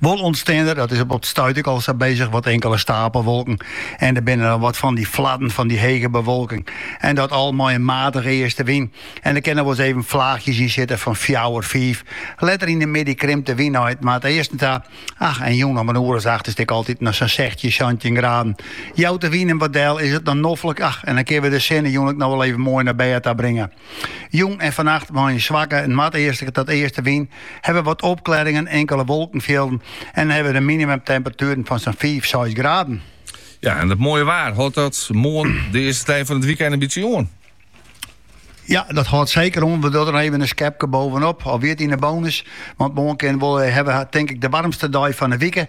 Wol ûntstean der, dat is op it stuit ek al sa bezig, wat inkele stapelwolken. En der binne dan wat fan dy fladden fan dy hege bewolking. En dat al mei in matige eastewyn. En der kinne wol ris even flaachjes yn sitte fan fjouwer, fiif. Letter yn de middei krimpt de wyn nei it noardeasten ta. Ach, en jûn om in oere as acht is it ek altyd noch sa'n sechstjin, santjin graden. Jout de wyn him wat del, is it dan noflik, ach, en dan kinne we de sinne jûn ek noch wol even moai nei bêd ta bringe. Jûn en fannacht mei in swakke noardeastlike tot eastewyn ha we wat opklearingen, inkele wolkenfjilden en ha we de minimumtemperatueren fan sa'n 5, 6 graden. Ja, en dat moaie waar, hâldt dat moarn de earste dei fan it wykein in bytsje oan? Ja, dat hâldt seker oan. We dogge der even in skepke bovenop. Alwer yn de bonus. Want moarn kin wel eh, ha we, tink ik, de waarmste dei fan de wike.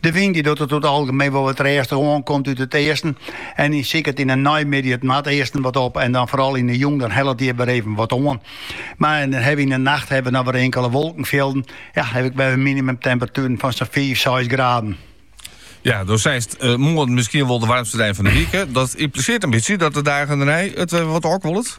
De wyn dy docht it oer it algemeen wol wat rêstich oan, komt út it easten en siket yn 'e neimiddei it noardeasten wat op en dan foaral yn 'e jûn dan hellet er wer even wat oan. Mar en dan hawwe wy yn 'e nacht hawwe wy noch wer inkele wolkenfjilden, ja hawwe wy wer minimumtemperatueren fan sa'n fiif, seis graden. Ja, do seist eh, moarn miskien wol de waarmste dei fan de wike. Dat impliseert in bytsje dat de dagen dernei it wer wat ôfkuollet.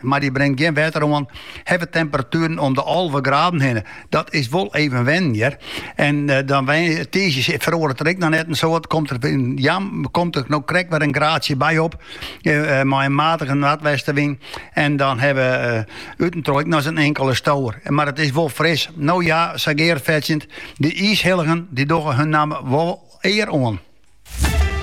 Mar dy bringt gjin wetter oan. Ha we temperatueren om de alve graden hinne. Dat is wol even wennen hjir. En dan tiisdei feroaret der ek noch net in soad. Komt der in, ja, komt der no krekt wer in graadsje by op. Mei in matige noardwestewyn. En dan hawwe we út en troch ek noch in inkele stower. Mar it is wol fris. No ja, sa gearfetsjend. De iishilligen dy dogge hun namme wol ear oan.